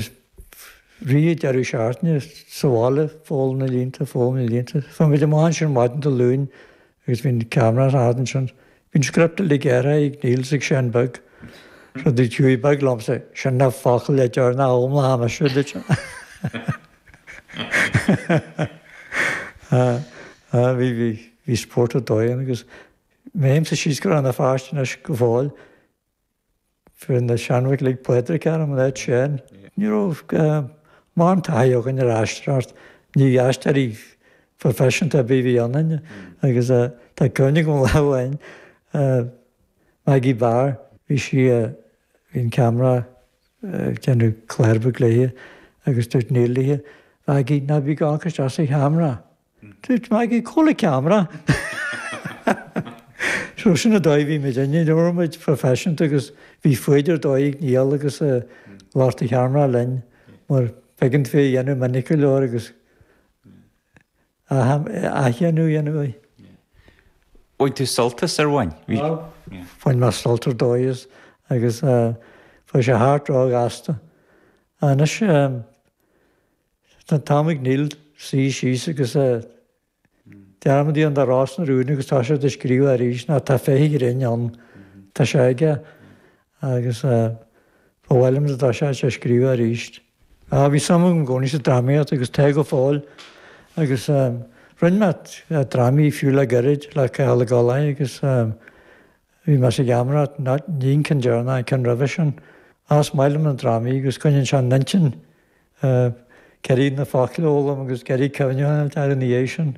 Is fríd an deireadh seachtaine, sa bhaile ag foghlaim na línte, ag foghlaim na línte. Chuaigh muid amach ansin maidin Dé Luain agus bhí an ceamara as a fhad ansin. Bhí an script uilig athraithe ag Neil is ag Seán Beag, rud a dúirt Hughie Beag liomsa, sin na focail deireanacha a fhoghlaimeoidh mise, a dúirt sé. Bhí, bhí, bhí spórt ar dóigh ann agus mheaimse síos go raibh na fáistine go fóill, Fuair na seanbhachlaigh Pádraig ar an leid sin. Ní raibh mórán taithí againn ar aisteoireacht, ní aisteoirí proifisiúnta a bhí ionainn agus tá cuimhne agam lá amháin ar Maggie Barr, bhí sí, bhí an ceamara ag déanamh clár beag léi agus dúirt Neil léi, Mhaggie, ná bí ag amharc isteach sa cheamara! Dúirt Maggie, Cá bhfuil an ceamara? So sin an dóigh a bhí muidinne, ní raibh muid proifisiúnta agus bhí foighid ar dóigh ag Niall agus ag lucht an cheamara linn mar b'éigean é a dhéanamh minic go leor agus athdhéanamh a dhéanamh air. Bhain tú sult as ar bhain? Bhain mé sult ar dóigh agus chuaigh sé thart róghasta. Anois Tá an t-am ag Neil suí síos agus dearmad a dhéanamh de Ros na Rún agus toiseacht ag scríobh arís nó tá féith an ghrinn ann. Tá sé aige agus ba mhaith liom dá dtosódh sé ag scríobh arís. Á bhí suim agam i gcónaí sa drámaíocht agus tá go fóill agus rinne mé drámaí fiú le gairid le Cathal Ó Goláin agus bhí mé sa gheamaireacht, ní an ceann deireanach, an ceann roimhe sin. Á is maith liom na drámaí agus coinníonn sé an intinn ii, ag iarraidh na focail a fhoghlaim agus ag iarraidh cuimhneamh an lá ina dhiaidh sin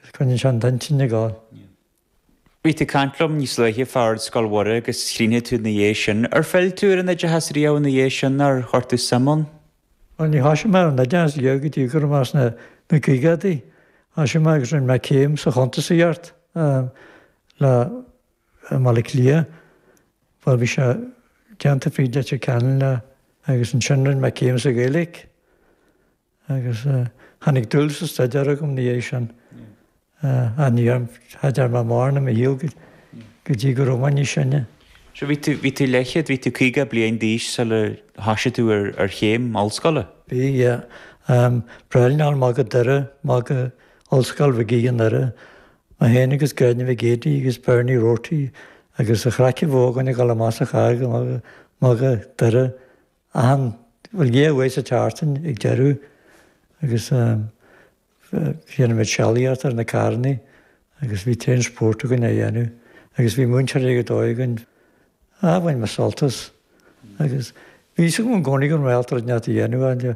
agus coinníonn sé an t-intinn ag gabháil. Bhí tú ag caint liom níos luaithe fá Ard Scoil Mhuire agus chríochnaigh tú ina dhiaidh sin. Ar phill tú ar an oideachas riamh ina dhiaidh sin nó ar chuir tú suim ann? Bhuel, níor thosaigh mé ar an oideachas riamh go dtí go raibh mé sna caogadaí. Thosaigh mé agus rinne mé céim sa chuntasaíocht le. i mBaile Átha Cliath. Bhuel, bhí sé déanta fríd Leitir Ceanainn lá agus ansin rinne mé céim sa Ghaeilge agus tháinig dúil sa staidéar agam ina dhiaidh sin. Ach ní dhearna, cha dearna mé mórán i mo shaol go dtí go raibh mé níos sine. So bhí tú, bhí tú leathchéad, bhí tú caoga bliain d'aois sular thoisigh tú ar, ar chéim ollscoile? Bhí, yeah. Ag traibhleáil amach go Doire, amach go Ollscoil Mhig Aoidh i nDoire Mac Éin agus Gráinne Mhic Géidigh agus Bernie Rorty agus an chraic a bhí againn ag dul amach sa charr go Maigh Doire, achan, bhuel, dhá uair sa tseachtain ag deireadh agus dhéanadh muid sealaíocht ar na carrannaí agus bhí tréan spóirt againn á dhéanamh agus bhí múinteoir ar dóigh againn agus bhain mé sult as agus bhí fhios agam i gcónaí go raibh mé ábalta rud inteacht a dhéanamh ann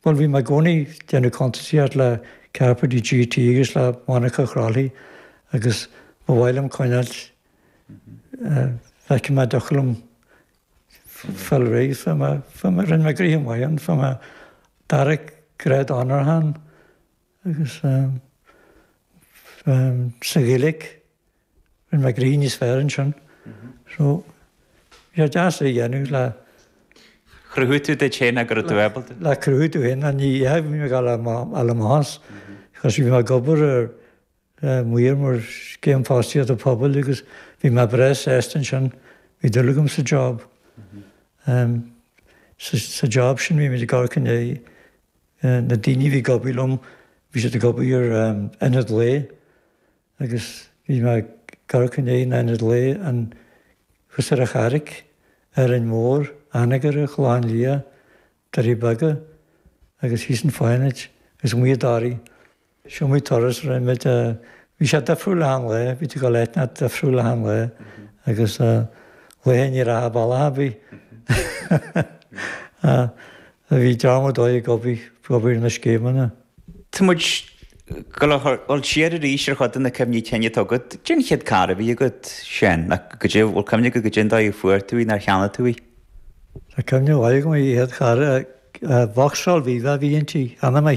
Bhuel, bhí mé i gcónaí ag déanamh cuntasaíocht le Cairbre de GT agus le Monica Crowley agus ba mhaith liom coinneáil leis, feicfidh mé, thiocfadh liom fáil réidh, fáil mé, fáil mé, rinne mé gréithe maith ann, fuair mé dara grád onóracha ann. Agus sa Ghaeilic, rinn mé gnoithe níos fearr ansin. So, bhí sé deas é a dhéanamh le cruthú duit féin ach go raibh tú ábalta. Le cruthú duit féin, ní hé go mbím ag dul al a mbás, because bhí mé ag obair mar mhaor ar Scéim Fostaíochta Pobail agus bhí mé breá sásta ansin, bhí dúil agam sa job. Sa job sin bhí mé ag amharc i ndiaidh. Eh, na daoine a bhí ag obair liom, bhí siad ag obair ar, em, ionaid lae agus bhí mé ag amharc i ndiaidh na ionaid lae ann, thuas ar an Charraic, Árainn Mhór, Anagaire, Gleann Bhéatha, Doirí Beaga agus thíos i bhFánaid agus amuigh i dToraigh. Is iomaí turas a rinne muid, bhí sé difriúil achan lá, bhí tú ag dul áiteanna difriúil achan lá agus laetha ní raibh a bealach a' bith. Bhí dream ar dóigh ag obair, ag obair ar na scéimeanna. Tá muid ag gabháil a dhul siar arís ar chuid de na cuimhní cinn atá agat. Cé an chéad carr a bhí agat, Seán? Nach, go dtí, bhfuil cuimhne agat go dtí an dóigh a fuair tú í, nár cheannaigh tú í? Tá cuimhne mhaith agam, an chéad charr, Vauxhall Viva a bhí inti, cheannaigh mé